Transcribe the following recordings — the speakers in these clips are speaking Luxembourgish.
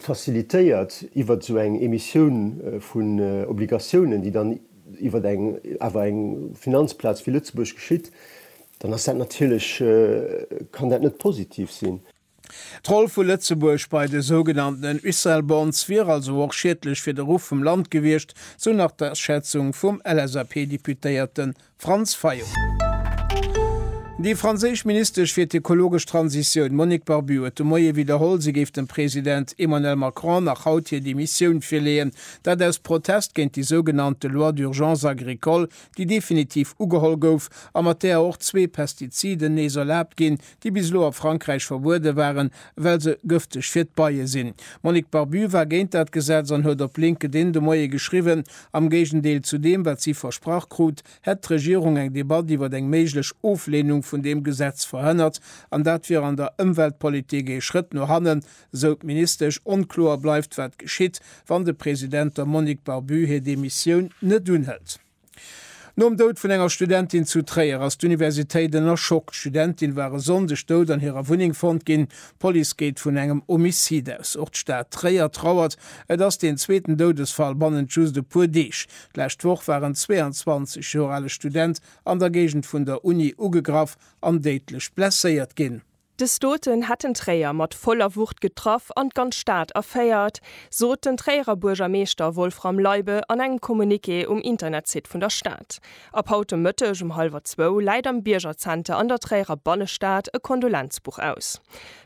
facilitéiert iwwer esou eng Emissioun vun Obligatiounen, déi dann iwwer eng, awer eng Finanzplaz wéi Lëtzebuerg geschitt, dann ass dat natierlech, kann dat net positiv sinn. D'Roll vu Lëtzebuerg bei de sougenanntenen Uccelbonds wier also och schiedlech fir de Ruff vum Land gewiescht, sou nach d'Aschätzung vum LSAP-Deputéierten Franz Fayot. Déi franséisch Ministesch fir d'ökologesch Transitioun Monique Barbut huet de Moie widderholl, si géif dem President Emmanuel Macron nach haut hir Demissioun virleeën. Dat aus Protest géint déi sougenannte Loi d'urgence agricole, déi definitiv ugeholl gouf a mat där och zwee Pestiziden nees erlaabt ginn, déi bis elo a Frankräich verbuede waren, well se gëfteg fir d'Beie sinn. D'Monique Barbut war géint dat Gesetz an huet op LinkedIn de Moie geschriwwen, am Géigendeel zu deem, wat si versprach krut, hätt d'Regierung eng Debatt iwwer eng méiglech Oflehnung vun deem Gesetz verhënnert an dat wier an der Ëmweltpolitik ee Schrëtt no hannen, sou d'Ministesch. Onkloer bleift, wat geschitt, wann de President der Monique Barbut hir Demissioun net unhëlt. Nom Doud vun enger Studentin zu Tréier ass d'Universitéit ënner Schock. D'Studentin war e Sonndeg dout an hirer Wunneng fonnt ginn. D'Police geet vun engem Homicide aus. Och d'Stad Tréier trauert. Et ass deen zweeten Doudesfall bannent just e puer Deeg. D'lescht Woch war en 22 Joer ale Student an der Géigend vun der Uni ugegraff an déidlech blesséiert ginn. De Stoeten hätt den Tréier mat voller Wucht getraff an d'ganz Stad erféiert, sot den Tréierer Buergermeeschter Wolfram Leibe an engem Communiqué um Internetsite vun der Stad. Ab haut de Mëtteg um hallwer zwou läit am Biergerzenter an der Tréierer Bannestad e Kondolenzbuch aus.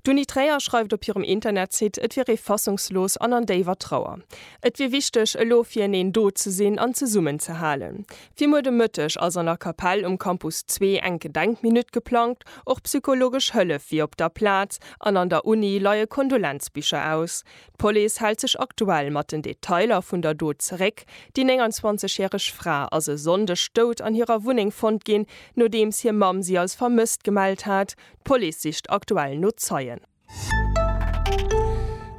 D'Uni Tréier schreift op hirem Internetsite, et wier ee fassungslos an an déiwer Trauer. Et wier wichteg, elo fir eneen do ze sinn an zesummenzehalen. Fir muer de Mëtteg ass an der Kapell um Campus Zwee eng Gedenkminutt geplangt. Och psychologesch Hëllef wier op der Plaz an an der Uni leie Kondolenzbicher aus. D'Police hält sech aktuell mat den Detailer vun der Dot zeréck. Déi 29 järeg Fra ass e Sonndeg dout an hirer Wunneng fonnt ginn, nodeems hir Mamm si als vermësst gemellt hat. D'Police sicht aktuell no Zeien.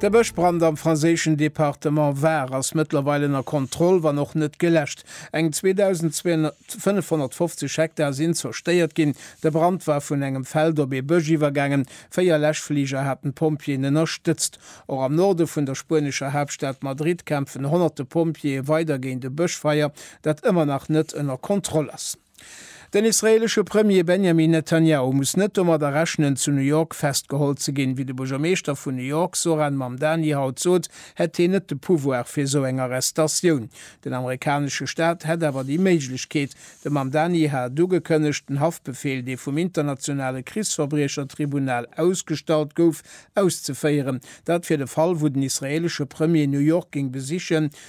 De Bëschbrand am franséischen Departement Var ass mëttlerweil ënner Kontroll, wann och net geläscht. Eng 2.550 Hektar sinn zerstéiert ginn. De Brand war vun engem Feld op ee Bësch iwwergaangen. Véier Läschfliger haten d'Pompjeeën ënnerstëtzt. Och am Norde vun der spuenescher Haaptstad Madrid kämpfen honnerte Pompjeeë weider géint e Bëschfeier, dat ëmmer nach net ënner Kontroll ass. Den israeelesche Premier Benjamin Netanjahu muss net domadder rechnen, zu New York festgeholl ze ginn. Wéi de Buergermeeschter vun New York Zohran Mamdani haut sot, hätt hien net de Pouvoir fir esou eng Arrestatioun. Den amerikanesche Staat hätt awer déi Méiglechkeet. De Mamdani hat ugekënnegt, den Haftbefeel, dee vum internationale Krichsverbriechertribunal ausgestallt gouf, auszeféieren. Dat fir de Fall, wou den israeelesche Premier New York géing besichen,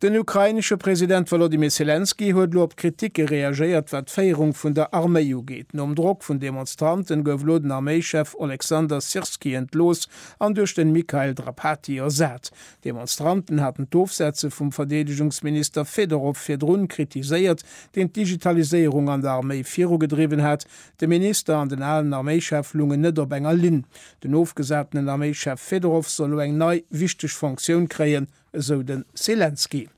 Den ukrainesche President Wolodymyr Selenskyj huet elo op Kritike reagéiert, wat d'Féierung vun der Arméi ugeet. Nom Drock vun Demonstranten gouf elo den Arméichef Oleksandr Syrskyi entlooss an duerch den Mikhail Drapatyi ersat. D'Demonstranten haten d'Ofsetze vum Verdeedegungsminister Fedorow virdrun kritiséiert, deen d'Digitaliséierung an der Arméi virugedriwwen hat. De Minister an den alen Arméichef lungen net op enger Linn. Den ofgesatenen Arméischef Fedorov soll elo eng nei, wichteg Fonctioun kréien, esou de Selenskyj.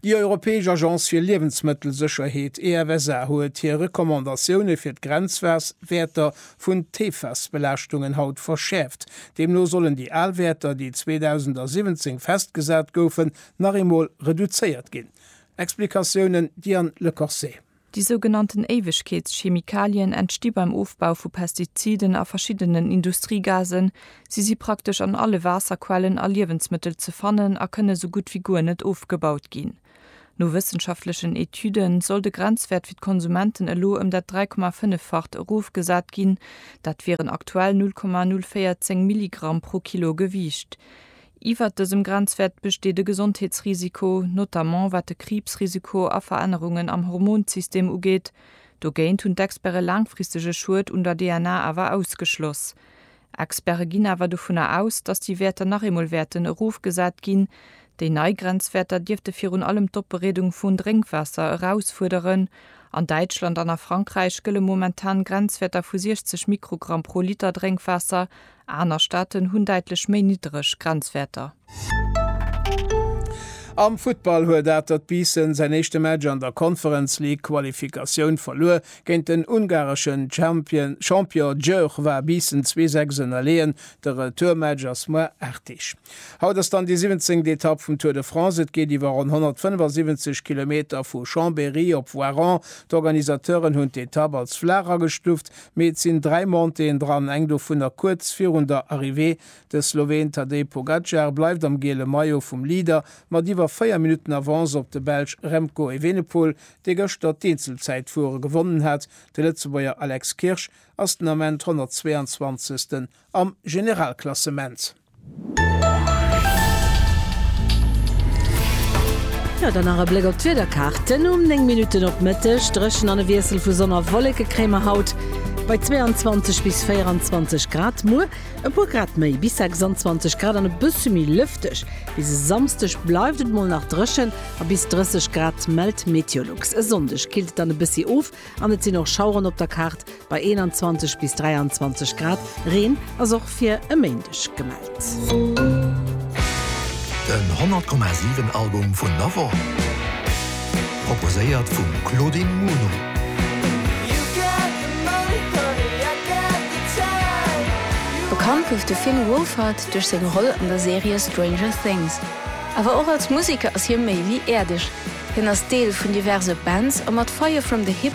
Déi europäesch Agence fir Liewensmëttelsécherheet, EFSA, huet hir Recommandatioune fir d'Grenzwaers Wäerter vun d'PFAS-Belaaschtungen haut verschäerft. Deemno sollen déi al Wäerter, déi 2017 festgesat goufen, nach eemol reduzéiert ginn. Explikatiounen Diane Lecorset. Déi sougenannten Éiwegkeetschemikalien entsti beim Ofbau vu Pestiziden a verschiddenen Industriegasen. Si si praktesch an alle Waasserquellen a Liewensmëttel ze fannen a kënne sou gutt wéi guer net ofgebaut ginn. No wëssenschaftlechen Etüde soll de Grenzwäert fir d'Konsumenten elo ëm dat 3,5-facht erofgesat ginn, dat wieren aktuell 0,014 Milligramm pro Kilo Gewiicht. Iwwert dësem Grenzwäert besteet e Gesondheetsrisiko, notamment wat de Kriibsrisiko a Verännerungen am Hormonsystem ugeet. Dogéint hunn d'Experte laangfristege Schued un der DNA awer ausgeschloss. Experte ginn awer dovunner aus, datt déi Wäerter nach eemol wäerten erofgesat ginn. Déi nei Grenzwäerter dierfte virun allem d'Opbereedung vun Drénkwaasser erausfuerderen. An Däitschland an a Frankräich gëlle momentan Grenzwäerter vu 60 Mikrogramm pro Liter Drénkwaasser Aner Staaten hunn däitlech méi niddreg Grenzwäerter. Am Futtball huet Atert Biissen säin éischte Match an der Conference League Qualifikatioun verluer. Géint den ungareschen Champion Győr war Biissen zwee Sechs ënnerleeën. De Retourmatch ass muer 8 Deeg. Haut ass dann déi siwenzéngt Etapp vum Tour de France. Et geet iwwer ronn 175 Kilometer vu Chambéry op Voiron. D'Organisateuren hunn d'Etapp als flaach agestuuft. Mee et sinn dräi Montéeën dran, eng dovunner kuerz virun der Arrivée. De Sloween Tadej Pogacar bleift am giele Maillot vum Leader mat iwwer 4 Minutten Avance op de Belsch Remco Evenepoel, dee gëschter d'Eenzelzäitfuere gewonnen hat. De Lëtzebuerger Alex Kirsch ass den Ament 122. am Generalklassement. Jo, dann nach e Bléck op d'Wiederkaarten. Um 9 Minutten op Mëtteg dréchen an e Wiessel vu Sonn a Wolleke kréie mer haut bei 22 bis 24 Grad. Muer e puer Grad méi, bis 26 Grad an e bësse méi lëfteg. Bis e Samsdeg bleift et mol nach dréchen a bis 30 Grad mellt Meteolux. E Sonndeg killt et dann e bëssi of an et sinn och Schaueren op der Kaart, Bei 21 bis 23 Grad. Reen ass och fir e Méindeg gemellt. Den 100,7 Album vun der Woch, proposéiert vum Claudine Muno. Bekannt gouf de Finn Wolfhard duerch seng Roll an der Serie Stranger Things. Awer och als Museker ass hie méi wéi äerdeg. Hien ass Deel vun diverse Bands a mat Fire From The Hip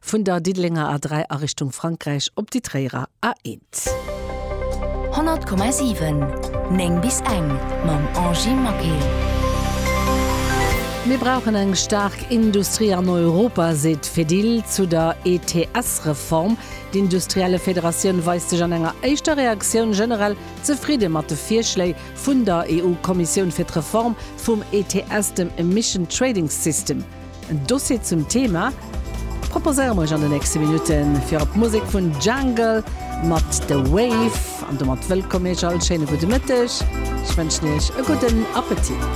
Vun der Diddelenger A3 a Richtung Frankräich op déi Tréierer A1. 100,7, 9 bis eng, Mam Angie Maquet. Mir brauchen eng staark Industrie an Europa, seet Fedil zu der ETS-Reform. D'Industrielle Federatioun weist sech an enger éischter Reaktioun generell zefridde mat de Virschléi vun der EU-Kommissioun fir d'Reform vum ETS, dem Emission Trading System. En Dossier zum Thema proposéiere mer iech an de nächste Minutten, virop d'Musek vun Jungle mat The Wave. An domat wëllkomm iech all, schéine gudde Mëtteg, ech wënschen iech e gudden Appetit.